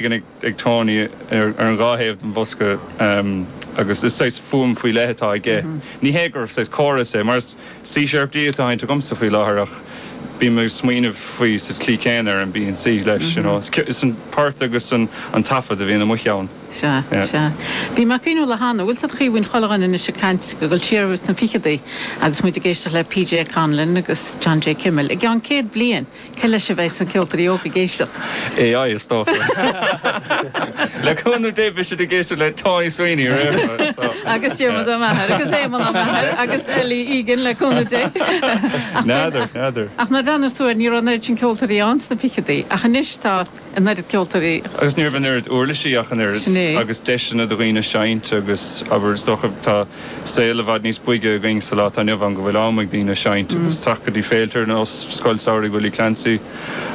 Beagan ag Tony ar an dhá thaobh den bhosca agus is saghas fuaim faoi leith atá aige. Ní hé gur saghas córas é, mar is C sharp D atá á sheinnt agamsa faoi láthair ach bím ag smaoineamh faoi sa tslí chéanna ar an B and C leis, you know. Is an port agus an taifead a bhíonn amuigh ann. Sea, sea. Bhí mé ag cuimhneamh le hAnna, bhfuil a fhios a'd Caoimhín Chullugáin anois ag caint, ag dul siar ins na ficheadaí agus muid ag éisteacht le PJ Conlon agus John J. Kimmel, i gceann céad bliain. Cé leis a bheas na ceoltóirí óga ag éisteacht? AI, is dócha. Le cúnamh Dé beidh siad ag éisteacht le Tommy Sweeney aréir. Agus Diarmuid Ó Meachair agus Éamonn Ó Meachair agus Ellie Egan, le cúnamh Dé. N'fheadar, n'fheadar. Ach nuair a bhreathnaíos tú air ní raibh an oiread sin ceoltóirí ann sna fichidí ach anois tá. an oiread ceoltóirí. agus ní raibh an oiread uirlisí ach an oiread. Sin é. agus deiseanna do dhaoine seinnt agus, abair, is dócha, tá saol i bhfad níos boige againn sa lá atá inniu ann go bhfuil am ag daoine seinnt agus teacht go dtí féilte ar nós Scoil Samhraidh Willie Clancy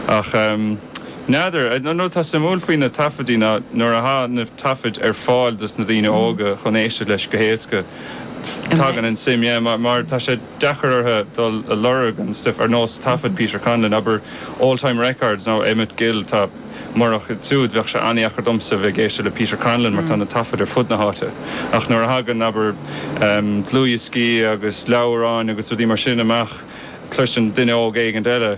ach n'fheadar. An rud atá suimiúil faoi na taifeadaí ná nuair atá na taifid ar fáil dos na daoine óga chun éisteacht leis go héasca tagann an suim yeah mar tá sé deacair orthu dul a lorg an stuif ar nós taifead Peter Conlon, abair Oldtime Records nó Emmett Gill. Tá murach siúd, bheadh sé an-dheacair domsa a bheith ag éisteacht le Peter Conlon mar tá na taifid ar fud na háite. Ach nuair a thagann, abair, dlúthdhioscaí agus leabhráin agus rudaí mar sin amach, cloiseann duine óg éigin eile,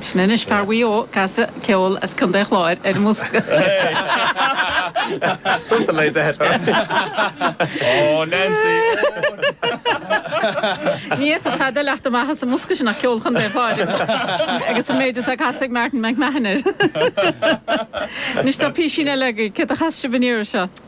Sin anois fear Mhaigh Eo ag casadh ceoil as Contae an Chláir ar an mbosca. Ní fhéadfadh tada leath do mhaitheas an mbosca sin ach ceol Chontae an Chláir agus an méid atá ag casadh ag Martin McMahon air. Anois tá písín eile againn, cé a chas sibh an iarraidh seo?